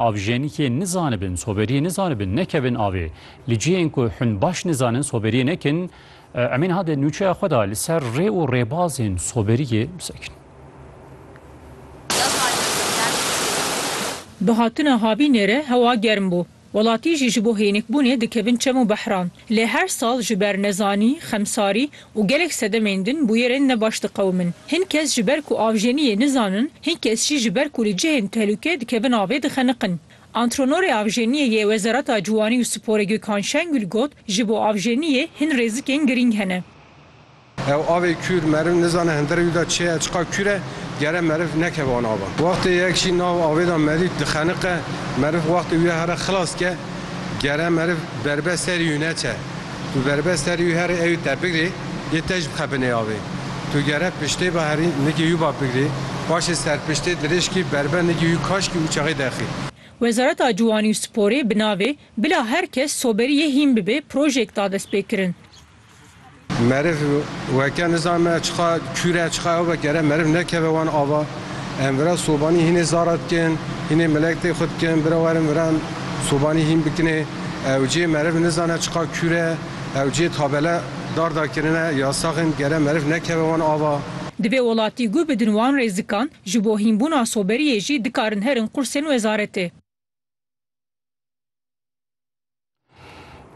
Avjenîkê nizanibin, soberiyê nizanibin, nekevin avê. Li cihên ku hûn baş nizanin soberiyê nekin, em ê niha di nûçeya xwe de li ser rê û rêbazên soberiyê bisekin. Bi hatina havî nêre hewa germ bû. Welatî jî ji bo hênikbûnê dikevin çem û behran. Lê her sal ji ber nezanî, xemsarî û gelek sedemên din bûyerên ne baş diqewimin. Hin kes ji ber ku avjeniyê nizanin, hin kes jî ji ber ku li cihên tehlûke dikevin avê dixeniqin. Antrenorê avjeniyê yê Wezareta Ciwanî û Sporê Gökhan Şengül got, Ji bo avjeniyê hin rêzikên girîng hene. Ew avê kûr meriv nizane hindira wî de çi ye, çiqas kûr e, gere meriv nekeve wan ava. Wextê yek jî nav avê de medît dixeniqe, meriv wextê wî ya here xilas ke, gere meriv berbe serî wî neçe. Tu verbe serî û herî ew te bigirî yê te jî bixe binê avê. Tu gere piştê ve herî nigî yû ve bigirî, paşê serpiştê dirêjkî verbe nigî yû kaşkî û çaxê dexî. Wezareta Ciwanî û Sporê bi navê Bila her kes soberî yê hîn bibê projeyek da destpêkirin. Meriv weke nizanime çiqa kûr e, çiqa ew e gere meriv nekeve wan ava. Em vira sobanî hînê zara dikin, hînê milek tê xwe dikin bira werin viran sobanî hîn bikinê. Ew cê meriv nizane çiqa kûr e. Ew cê tabele dar dar kirine ya sax in gere meriv nekeve wan ava. Divê welatî guh bidin wan rêzikan, ji bo hînbûna soberiyê jî dikarin herin qursên wezaretê.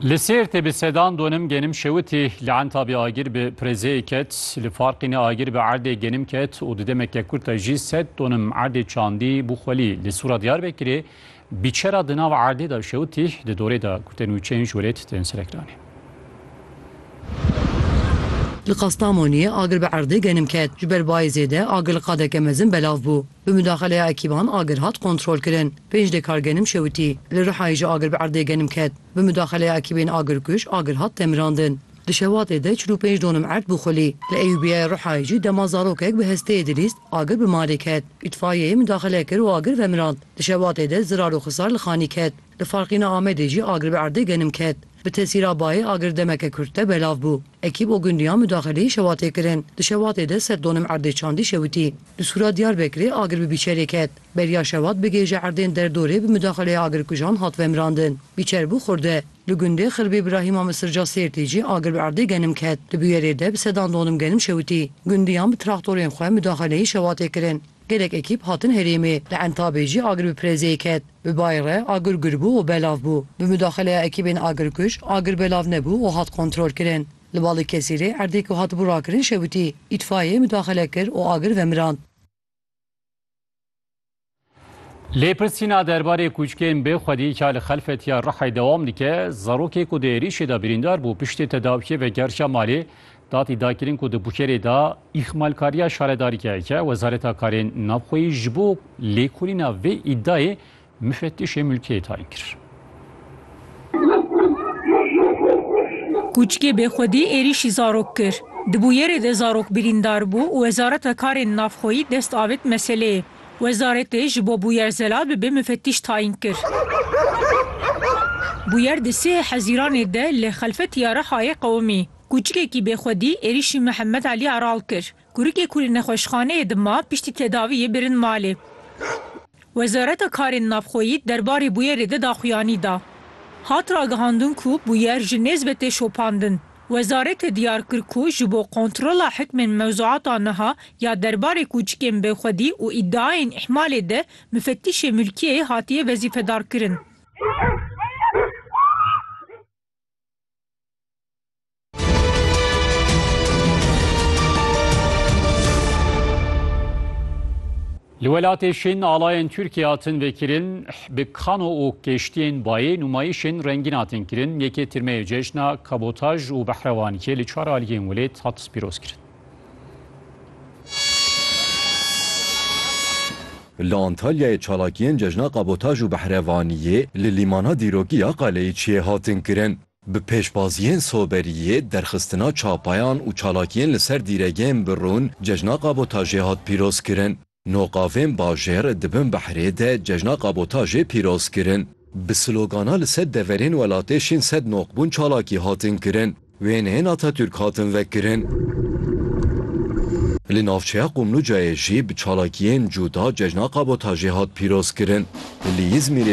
Li Sêrtê bi sedan donim genim şewitî li Entabê agir bi pirêzeyê ket. Li Farqînê agir bi erdê genim ket û di demeke kurt de jî sed donim erdê çandî bû xwelî. Li Sûra Diyarbekirê Bîçera di nav erdê de şewitî, di dorê de ku te nûçeyên ji welêt tên serekiranê. Li Kastamoniyê agir bi erdê genim ket. Ji ber bayê zêde agir li qadeke mezin belav bû. Bi mudaxeleya ekîban agir hat kontrolkirin. Pênc dê kar genim şewitî. Li Rihayê jî agir bi erdê genim ket. Bi mudaxeleya ekîbên agirkuj agir hat temirandin. Di şewatê de çil û pênc donim erd bû xulî. Li Eyûbiyayê Rihayê jî dema zarokek bi hesteyê dilîst, agir bi malê ket. Îtfaiyeyê midaxile kir û agir vemirand. Di şewatê de zirar û xisar li xanî ket. Li Farqîna Amedê jî agir bi erdê genim ket. Bi tesîra bayê agir demeke kurt de belav bû. Ekîb û gundiyan midaxileyî şewatê kirin. Di şewatê de sed donim erdê çandî şewitî. Li Sûra Diyarbekirê agir bi bîçerê ket. Beriya şewat bi gêje erdên derdorê bi midaxileya agirkujan hat vemirandin. Bîçer bû xurde. Li gundê Xirbê Birahîma Misirca Sêrtê jî agir bi erdê genim ket. Di bûyerê de bi sedan donim genim şewitî. Gundiyan bi traktorên xwe mudaxeleyî şewatê kirin. Gelek ekîp hatin herêmê. Li Entabê jî agir bi pirêzeyê ket. Bi bayê re agir gul bû û belav bû. Bi mudaxeleya ekîbên agirkuj agir belav nebû û hat kontrolkirin. Li Balıkesirê erdê ku hatibû rakirin şewitî. Îtfaiyeyê mudaxele kir û agir vemirand. Lêpirsîna derbarê kûçkên bê xwedî ka li Xelfetiya Rihê dewam dike, zarokê ku di êrîşê de birîndar bû piştî tedawiyê vegerşiya malê, datî dakirin ku di bukerê de îxmalkariya şaredarî keyeke Wezareta Karên Navxweyî ji bo lêkolîna vê îdiayê mifetişê mulkiyê tayin kir. Kûçikê Bêxwedî êrîşî zarok kir. Di bûyerê de zarok birîndar bû û Wezareta Karên Navxweyî dest avêt meseleyê. Wezaretê ji bo bûyer zelal bibe mufetîş tayîn kir. Bûyer di sihê Hezîranê de li Xelfetiya Rihayê qewimî. Kûçikekî Bêxwedî êrîşî Mihemed Elî Aral kir. Kurikê ku li nexweşxaneyê dima piştî tedaviyê birin malê. Wezareta Karên Navxweyî derbarê bûyerê de daxuyanî da. Hat ragihandin ku bûyer ji nêz ve tê şopandin. Wezaretê diyar kir ku ji bo kontrola hikmên mewzuata niha ya derbarê kûçikên bêxwedî û îdiayên îhmalê de mufetîşê mulkiyeyê hatiye wezîfedarkirin. Li welatê Şîn alayên Tirkiyê hatin vêkirin bi kano û keştiyên bayê nûmayîşên rengîn hatin kirin. Yekê tîrmeyê cejna kabotaj û behrewanikê li çar aliyên welêt hat pîroz kirin. Li Antalyayê çalakiyên cejna kabotaj û behrevaniyê li lîmana dîrokî ya Qeleyiçiyê hatin kirin. Bi pêşbaziyên soberiyê, derxistina çapayan û çalakiyên li ser dîregehên bi rûn cejna kabotajê hat pîrozkirin. Nû qavên bajêr di bin behrê de cejna kabotajê pîroz kirin. Bi slogana li sed deverên welatê şîn sed noqbûn çalakî hatin kirin. Wêneyên Atatürk hatin vekirin. Li navçeya Qumlucayê jî bi çalakiyên cûda cejna kabotajê hat pîrozkirin. Li Îzmîrê